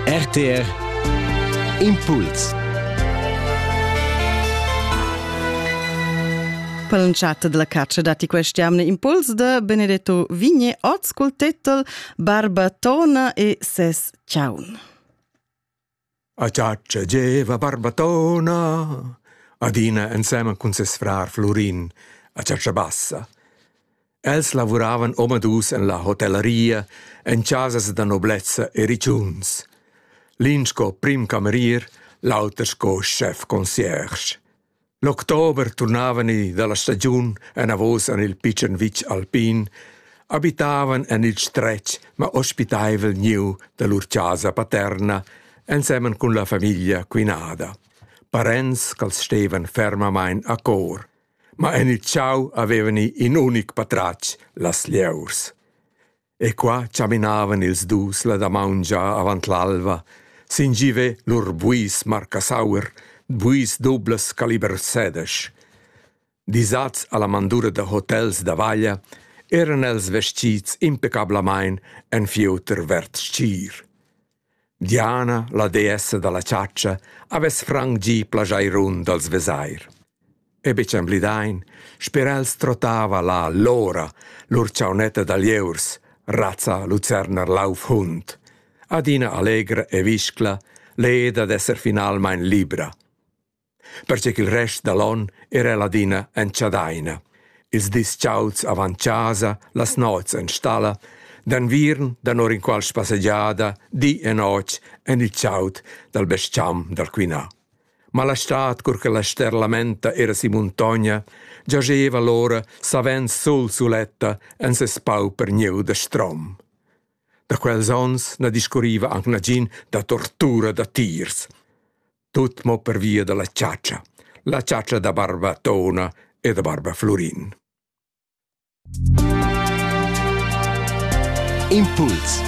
RTR Impuls Per l'entschatta della caccia dati quest'anno impuls de Benedetto Vigne, oz col titel Barbatona e ses ciaun. A chatscha gieva Barbatona adina ensemen cun ses frar Flurin a chatscha bassa. Els lavuravan omadus en la hotellaria en chasas da noblezza e ritschuns. L'in sco prim camerier, l'auter sco chef concierge. L'october turnavani dalla stagiun anavos en il pitschen vitg alpin, abitavan en il stretg ma ospitaivel gnieu da lur chasa paterna ensemen cun la famiglia quinada. Parents ch'als stevan fermamain a cor. Ma en il chau avevani in unic patratg, las lieus. E qua chaminavan ils dus la damaun già avant l'alva, sin giver lur buis marcasaur, buis dublas caliber sedesch. Disats alla mandura da hotels da vaglia, eran els vestits impecablamain en fieuter verd stgir. Diana, la deessa dalla chatscha, havess franc gì plageirun d'als vesair. E betg emblidain, sper els trottava là Lora, lur chaunetta da lieurs, razza lucerner laufhund, adina allegra e viscla, leda d'esser finalmain libra. perche ch'il rest da l'on era ladina en chadaina. Ils dis chauds avant chasa, las nots en stalla, d'enviern danor inqual spassegiada, di e notg en il chaud dal bes-cham dal Quinà. Ma la stad, cur che la ster lamenta era si muntogna, giageva l'ora savens sul suletta en ses pauper gnieu da strom. Da quels onns na discurriva anc nagin da tortura da tiers. Tut mo pervia dalla chatscha, la chatscha da barba Tona e da barba Flurin. Impuls